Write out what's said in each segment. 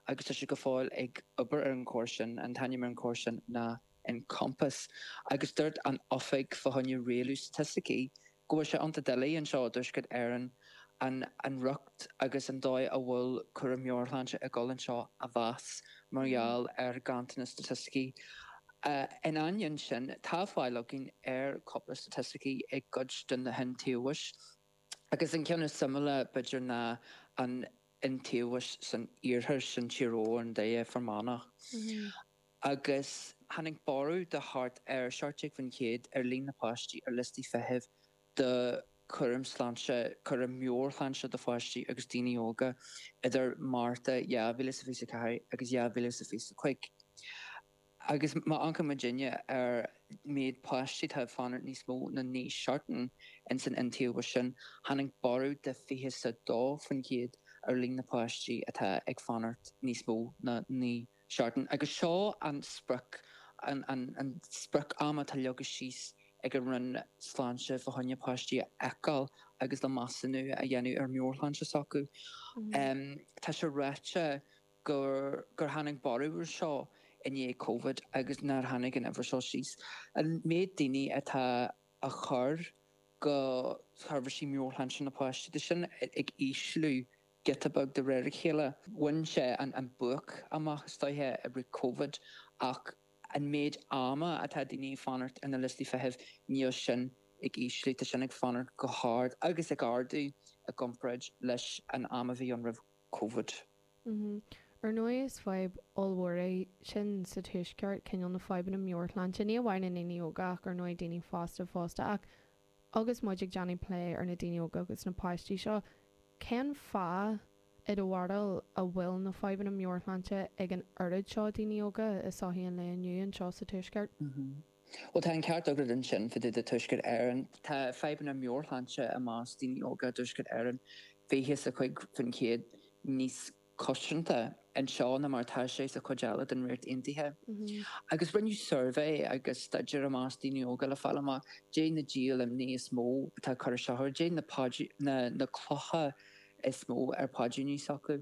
agus tá sé go fóill ag obair ar an gcóras sin, an t-ainm ar an gcóras sin ná Encompass, agus dúirt an Oifig fá choinne Rialú Staitisticí go bhfuil sé iontach doiligh anseo i dTuaisceart Éireann an an riocht agus an dóigh a bhfuil cúram meabhairshláinte ag dul anseo a mheas mar gheall ar ganntanas staitisticí. In ainneoin sin, tá fáil againn ar cúpla staitisticí i gcuid de na hiontaobhais agus an ceann is suimiúla b'fhéidir ná an iontaobhas san iarthar, sin Tír Eoghain, Doire, Fear Manach, agus tháinig borradh de thart ar 17 faoin chéad ar líon na páistí ar liostaí feithimh do chúram sláinte, cúram meabhairshláinte do pháistí agus daoine óga, idir Márta 2024 agus 2025. Agus má amharcann muidinne ar an mhéid páistí atá ag fanacht níos mó ná naoi seachtain ins an iontaobhas sin, tháinig borradh de fiche 's a dó faoin gcéad ar líon na bpáistí atá ag fanacht níos mó ná naoi seachtain. Agus seo an sprioc, an sprioc ama atá leagtha síos ag an Roinn Sláinte fá choinne páistí a fheiceáil agus le measúnú a dhéanamh ar mheabhairshláinte s'acu. Tá sé ráite. gur gur tháinig borradh ar seo i ndiaidh Covid agus nár tháinig an uimhir seo síos, an méid daoine atá á chur chuig seirbhísí meabhairshláinte na páistí, tá sin ag ísliú giota beag de réir a chéile. Bhain sé an an buaic amach istigh i rith Covid ach an méid ama atá daoine ag fanacht ar na liostaí feithimh, níl sin ag ísliú, tá sin ag fanacht go hard agus ag ardú i gcomparáid leis an am a bhí ann roimh Covid. Mm-hmm. Ar ndóigh is fadhb ollmhór é sin sa tuaisceart, cineál na fadhbanna meabhairshláinte, ní amháin na daoine óga ach ar ndóigh daoine fásta fosta ach agus muid ag déanamh plé ar na daoine óga agus na páistí seo, cén fáth i do bharúil a bhfuil na fadhbanna meabhairshláinte ag an oiread seo daoine óga i sochaí an lae inniu anseo sa tuaisceart? Mm-hmm. Bhuel, tá an ceart agat ansin, fá dtaobh de Tuaisceart Éireann. Tá fadhbanna meabhairshláinte i measc daoine óga i dTuaisceart Éireann fiche 's a cúig faoin chéad níos coitianta anseo ná mar atá sé sa chuid eile den Ríocht Aontaithe. Agus rinneadh suirbhé agus staidéar i measc daoine óga le fáil amach dé na díol imní is mó atá ag cur isteach orthu, dé na paidrín, na clocha is mó ar paidríní s'acu.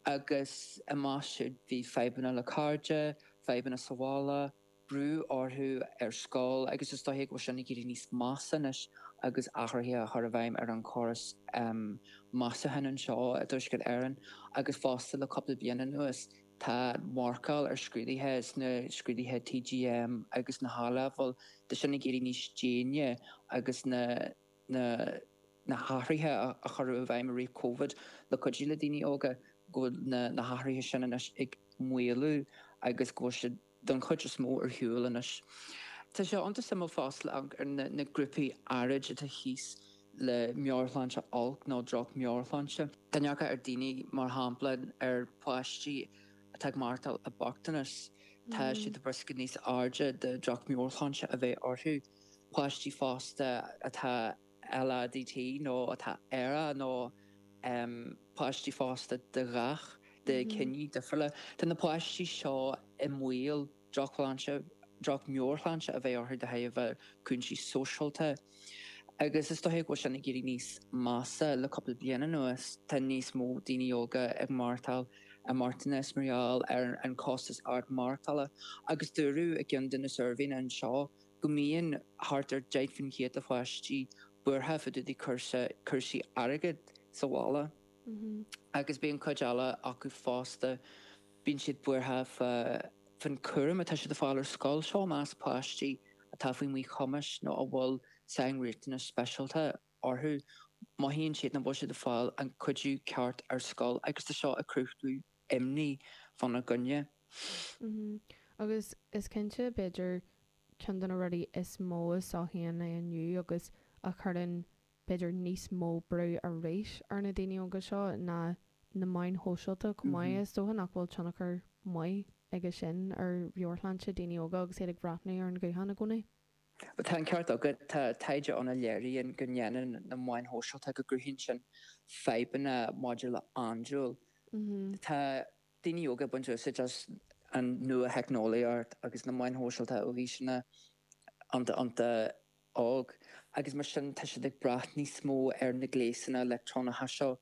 Agus i measc siad bhí fadhbanna le cairde, fadhbanna sa bhaile, brú orthu ar scoil agus is dóiche go bhfuil sin ag éirí níos measa anois agus athruithe á gcur i bhfeidhm ar an chóras measúcháin anseo i dTuaisceart Éireann agus fosta le cúpla bliain anuas tá marcáil ar scrúdaithe sna scrúdaithe TGMO agus na h-A-leibhéal tá sin ag éirí níos déine agus na h-athruithe a chuireadh i bhfeidhm i rith Covid le cuidiú le daoine óga go bhfuil na h-athruithe sin anois ag maolú agus go bhfuil siad. don chuid is mó ar shiúl anois. Tá sé ionta suimiúil fosta le hamharc ar na grúpaí áirid atá thíos le meabhairshláinte olc nó droch mheabhairshláinte. Má amharcann daoine, mar shampla ar pháistí atá ag maireachtáil i bochtanas, tá siad i riosca níos airde de droch mheabhairshláinte a bheith orthu. Páistí fosta atá. LADT nó atá aerach nó páistí fosta de dhath, de chiní difriúla. Tá na páistí seo i mbaol drochshláinte, droch-mheabhairshláinte a bheith orthu de thairbhe cúinsí sóisialta. Agus is dóiche go bhfuil sin ag éirí níos measa le cúpla bliain anuas. Tá níos mó daoine óga ag maireachtáil i mbochtanas mar gheall ar an costas ard maireachtála. Agus dúradh i gceann de na suirbhéanna anseo, go mbíonn thart ar 10 faoin chéad de pháistí buartha fá dtaobh de chúrsaí airgid sa bhaile agus bíonn cuid eile acu fosta, bíonn siad buartha fán chúram atá siad a fáil ar scoil, seo i measc páistí atá faoi mhíchumas nó a bhfuil sainriachtanais speisialta orthu. Mothaíonn siad nach bhfuil siad ag fáil an cuidiú ceart ar scoil agus tá seo ag cruthú imní fána gcoinne. Mm-hmm. Agus is cinnte, b'fhéidir, ceann de na rudaí is mó a chothaíonn é inniu agus a chuireann b'fhéidir níos mó brú arís ar na daoine óga seo ná na meáin shóisialta chomh maith. Is dócha nach bhfuil tionchar maith aige sin ar mheabhairshláinte daoine óga agus iad ag breathnú ar an ghuthán i gcónaí. Tá an ceart agat. Tá taighde ann a léiríonn go ndéanann na meáin shóisialta, go gcruthaíonn sin fadhbanna maidir le andúil. Tá daoine óga ag baint úsáid as an nua-theicneolaíocht agus na meáin shóisialta ó aoiseanna iontach iontach óg agus mar sin tá siad ag brath níos mó ar na gléasanna leictreonacha seo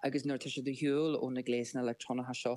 agus nuair atá siad ar shiúl ó na gléasanna leictreonacha seo